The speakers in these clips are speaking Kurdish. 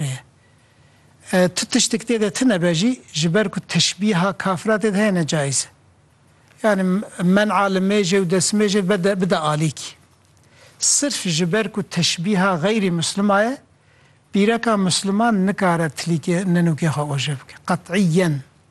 heye. Tu tiştek tê de tune be jî ji ber ku teşbîha kafira tê de heye ne cayîz e. Yanî men'a li mêjê û destmêjê bede bide alîkî. Sirf ji ber ku teşbîha xeyrî mislima ye, bîreka misliman nikare tilîkê ninûkê xwe oje bike. Qet'îyen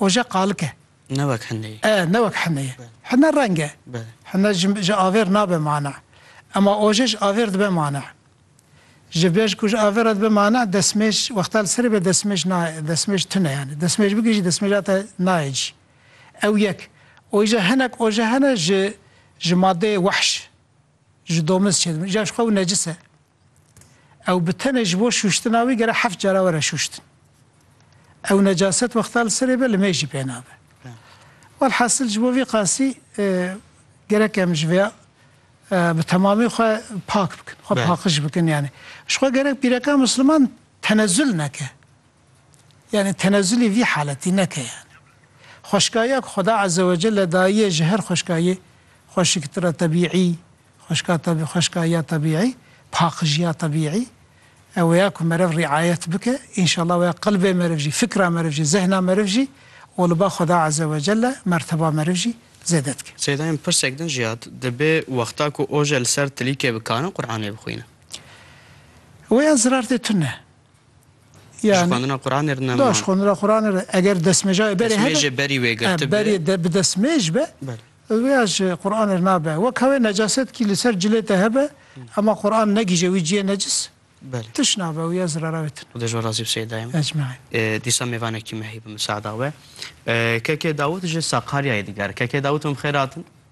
oje qalik e. Ne wek hine ye. E, ne wek hine ye. Hine reng e. Hine ji ji avêr nabe mana. Ema oje ji avêr dibe mana. Ji bêj ku ji avêr re dibe mana, desmêj wexta li serê be desmêj na desmêj tune yanî. Desmêj bigir jî desmêja te nayê cî. Ew yek. Oje hinek oje hene ji ji madeyê wehş. Ji domiz çêdibin. Îcar ji xwe ew necis e. Ew bi tenê ji bo şûştina wî gere heft cara were şûştin. Ew necaset wexta li serê be li mêjî pê nabe. Welhasil ji bo vî qasî gerek em ji vêya bi temamî xwe pak bikin, xwe paqiş bikin yani. Ji xwe gerek pîreka Musliman tenezul neke. Yanî tenezulî vî haletî neke yanî. Xweşkaya ku Xweda Ezzewecelle dayiye ji her xweşkayê xweşiktir e tebîî, xweşka teb xweşkaya tebîî, paqijiya tebîî. Ew ya ku meriv rîayet bike, înşallah ew ya qelbê meriv jî, fikra meriv jî, zehna meriv jî û li ba Xweda Ezzewecelle merteba meriv jî zêde dike. Seyda yên pirsek din jî hat, Dibê wexta ku oje li ser tilîkê bikarin Quranê bixwînin. Wê ya zirartê tune. Ji xwendina Quranê re nema. Ji xwendina Quranê re eger desmêja berê hebe. Desmêjê berî wê girtibe. Berî de bi desmêj be. Rêya ji Quranê re nabe. Wek hewê necasetkî li ser cilê te hebe ema Quran negihîje wî ciyê necis tiş nabe wî ya zirara wê tune. Xwedê ji we razî be Seyedayê min. Ecmaîn. Dîsa mêvanekî me heye bi misaada we. Keke Dawit ji Sakaryayê diger. Keke Dawit em bi xêr hatin.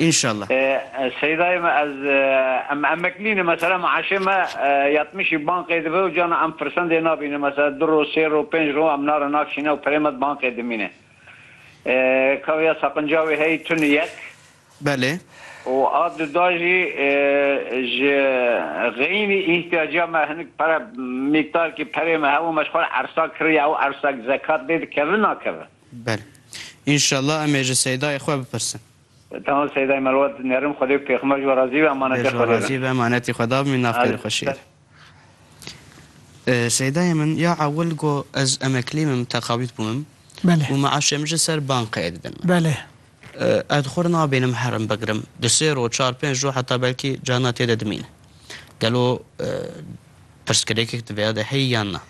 Înşallah. Seydayê me ez em emeklî ne mesela meaşê me yatmişî banqê dibe û cana em firsendê nabîne mesela du roj sê roj pênc roj em nare nakişîne û pirê me di banqê dimîne ka ya seqinca wê heyî tune yek Belê. û a duda jî ji xeyînî îhtiyaca me hinik pere mîkdarkî perê me hebû me ji xwe re ersa kiriye ew ersa zekat lê dikeve nakeve. Belê. Înşallah em ê ji Seydayê xwe bipirsin. Tamam Seyday Merwa dinerim Xwedê pêxmer ji we razî be emanetê Xwedê be. Bêj razî be emanetê Xwe da bimî naxêr xweşêr. Seydayê min ya ewil go ez emeklî bim teqawît bûmim û meaşê min ji ser banqeyê didin min. Ez xwe nabînim herim bigirim di sê roj çar pênc roj heta belkî carina tê de dimîne. Gelo pirsgirêkek di vêya de heye yan na?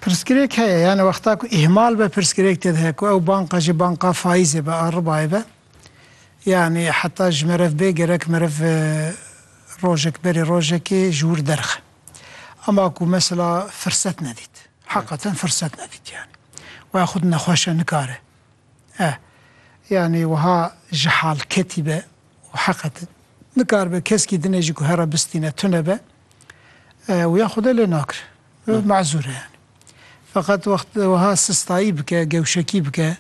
Pirsgirêk heye yanî wexta ku îhmal be pirsgirêk tê de heye ku ew banka jî banka faîzê be a ribayê be yanî heta ji meriv bê gerek meriv rojek berê rojekê ji wir derxe ema ku mesela firset nedît heqaten firset nedît yanî waya xwe di nexweşe nikare e yanî wiha ji hal ketî be û heqaten nikaribe keskî dinê jî ku here bistîne tune be wiya xwe de lê nakire. Mazur e yani. Feqet wext weha sistayî bike, gewşekî bike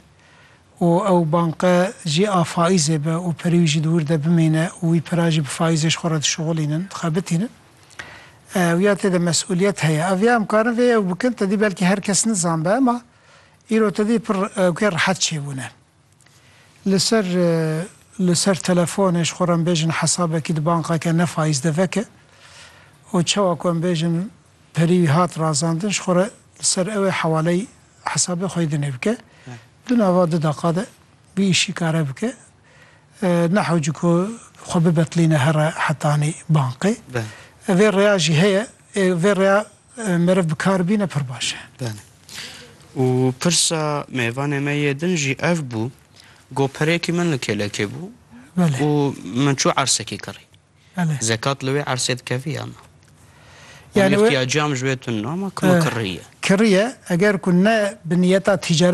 û ew banke jî a faîzê be û perê wî jî di wir de bimîne û wî pira jî bi faîzê ji xwe re dişuxulînin, dixebitînin. Ew ya tê de mesûliyet heye. Ev ya em karin vê ew bikin, tedî belkî her kes nizan be ema îro tedî pir ewkê rehet çêbûne. Li ser li ser telefonê ji xwe re em bêjin hesabekî di banqeke ne faiz de veke û çawa ku em bêjin perî wî hat razandin ji xwe re li ser ew ê hewaleyî hesabê xwe yê di nê bike. Di nava du deqa de vî îşî kare bike. Ne hewce ku xwe bibetilîne here heta anî banqê. Vê rêya jî heye. Ê vê rêya. Meriv bi kar bîne pir baş e. Belê. Û pirsa mêvanê me yê din jî ev bû, got pirekî min li kêlekê bû û min çû ersekê kirî. Zekat li wê ersê dikevî ya na? Yanî îhtiyacîya min ji wê tune ma ku min kirî ye. Kirî ye, eger ku ne bi niyeta tîcaret